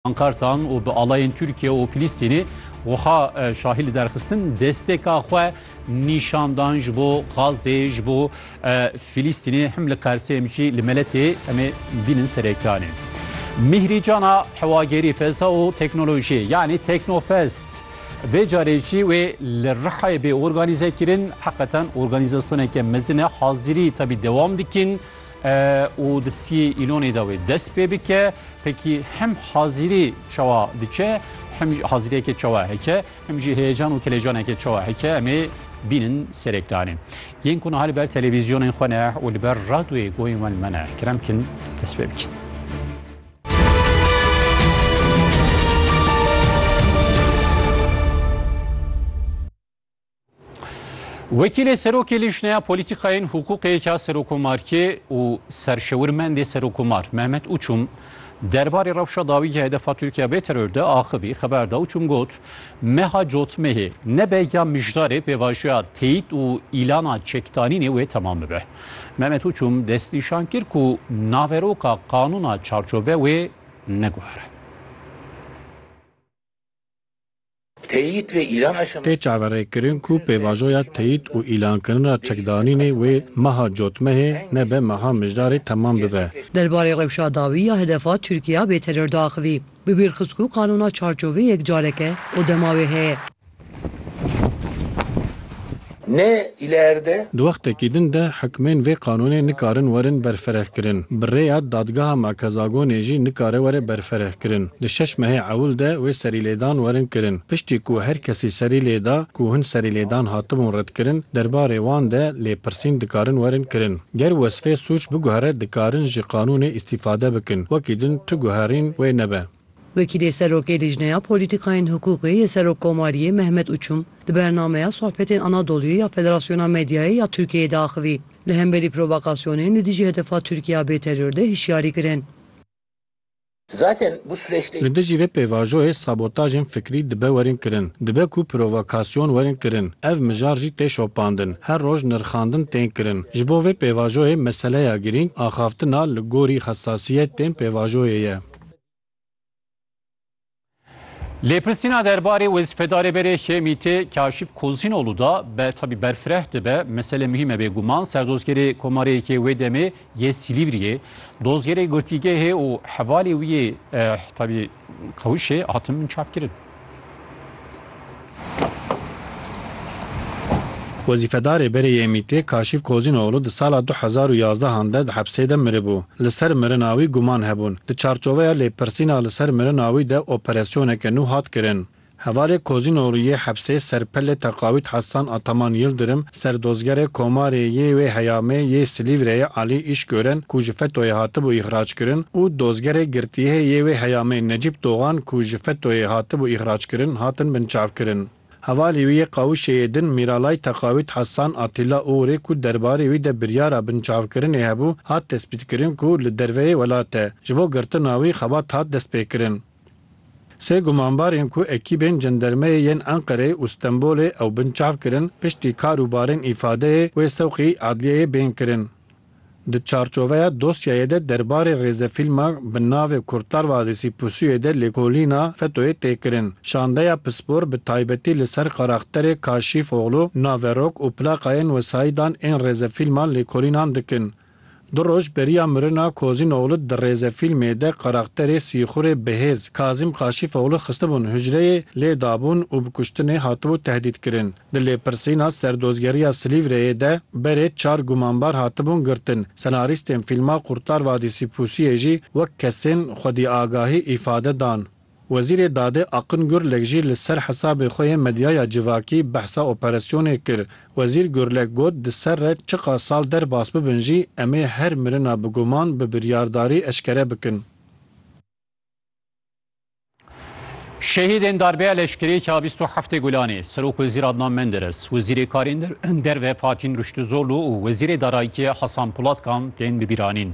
pankartan û bi alayên Tirkiye û Filîstînê wiha şahî li derxistin desteka xwe nîşandan ji bo Xazê ji bo Filîstînê him li Qersê jî li meletê em ê bînin serekanê. Mîhrî cana hewagerî feza û teknolojiyê yanî Teknofest. Vê carê jî wê li Rihayê bê organîze kirin heqeten organîzasyoneke mezin e hazirî tabî dewam dikin. û di siyê îlonê de wê dest pê bike pekî hem hazîrî çawa diçe hem hazîriyeke çawa heke hem jî heyecan û kelecaneke çawa heke em ê bînin serêkdanê yên ku niha li ber televîzyonên xwe ne û li ber radyoyê goyên wen me ne kirem kin dest pê bikin. Wekîlê Serokê Lîjneya Polîtîkayên Hûqûqê ya Serokomarkê û serşewirmendê Serokomar Mehmet Uçum derbarê rewşa dawî ya hedefa Tirkiya bê teror de axivî xeber da Uçum got meha cotmehê nebe ya mijdarê pêvajoya teyîd û îlana çekdanînê wê temam bibe. Mehmet Uçum destnîşan kir ku naveroka qanûna çarçove wê neguhere. Teyît ve îlan aşamas. Tê çaverêkirin ku pêvajoya teyît û îlankirin ra çekdanînê wê meha cotmehê nebe meha mijdarê temam bibe. Derbarê rewşa dawî ya hedefa Tirkîya bê teror diaxivî. Bi bîr xist ku qanûna çarçovê yek careke û dema wê heye. Ne îlerde. Di wextekî din de hikmên vê qanûnê nikarin werin berfirehkirin. Bi rêya Dadgeha Merkezagonê jî nikare were berfirehkirin. Di şeş mehê ewil de wê serîlêdan werin kirin. Piştî ku her kesî serî lê da ku hin serîlêdan hatibûn redkirin, derbarê wan de lêpirsîn dikarin werin kirin. Ger wesfê sûc biguhere dikarin ji qanûnê îstîfade bikin. Wekî din tu guherîn wê nebe. Wekîlê Serokê Lîjneya Polîtîkayên Hiqûqê yê Serokkomariyê Mehmet Uçum di bernameya Sohbetên Anadolu'yê ya Federasyona Medyayê ya Tirkiyeyê de axivî, li hemberî provokasyonên li dijî hedefa Tirkiya bê teror de hişyarî kirin. Li dijî vê pêvajoyê sabotajên fikrî dibe werin kirin, dibe ku provokasyon werin kirin, ev mijar jî tê şopandin, her roj nirxandin tên kirin. Ji bo vê pêvajoyê meseleya girîng axaftina li gorî hesasiyetên pêvajoyê ye. Lêpirsîna derbarê wezîfedarê berê HMT Kaşif Kozînolu da be tabî berfireh dibe mesele muhîm e bêguman serdozgerê komarê yekê wê demê yê Silîvriyê dozgerê girtîgehê û hevalê wî yê tabî qewişê hatin min çapkirin. Wezîfedarê berê yê MĪT'ê Kaşîf Kozînoglû di sala du hezar û yazdehan de di hepsê de miribû. Li ser mirina wî guman hebûn. Di çarçoveya lêpirsîna li ser mirina wî de operasyoneke nû hat kirin. Hevalê Kozînoglû yê hepsê Serpellê Teqawît Hesan Ataman Yildirim Serdozgerê Komarê yê wê heyamê yê Silîvreyê Alî Îşgören ku ji FETÖ'yê hatibû îxrackirin û dozgerê girtiyê yê wê heyamê Necîp Dogan ku ji FETÖ'yê hatibû îxrackirin hatin binçavkirin. Hevalî wî yê Qawişeyê din Mîralay Teqawît Hesan Atîla Uğurê ku derbarê wî de biryara binçavkirinê hebû hat destpîtkirin ku li derveyê welat e. Ji bo girtina wî xebat hat destpêkirin. Sê gumanbarên ku ekîbên cendermeyê yên Enqereyê û Stenbolê ew bin çav kirin, piştî kar û barên îfadeyê wê sewqî adliyeyê bên kirin. Di çarçoveya dosyayê de derbarê rêzefîlma bi navê Kurtar Vadisi Pusuye de lêkolîna FETÖ'yê tê kirin. Şandeya pispor bi taybetî li ser karakterê Kaşîfoglu, naverok û plaqayên wesayîdan ên rêzefîlman lêkolînan dikin. Du roj beriya mirina Kozîn Oglu di rêzefîlmê de karakterê sîxurê bihêz Kazîm Kaşîfoglu xistibûn hucreyê, lê dabûn û bi kuştinê hatibû tehdîdkirin. Di lêpirsîna Serdozgeriya Silîvreyê de berê çar gumanbar hatibûn girtin. Senarîstên fîlma Kurtar Vadîsî Pûsiyê jî wek kesên xwedîagahî îfade dan. Wezîrê Dadê Akın Gürlek jî li ser hesabê xwe yê medyaya civakî behsa operasyonê kir. Wezîr Gürlek got, Di ser re çiqas sal derbas bibin jî em ê her mirina bi guman, bi biryardarî eşkere bikin. Şehîdên darbeya leşkeriyê ka bîst û heftê Gulanê, Serokwezîr Adnan Menderes, Wezîrê Karên Derve Fatîn Ruştuzolu û Wezîrê Darayîtiyê Hasan Polatkan tên bibîranîn.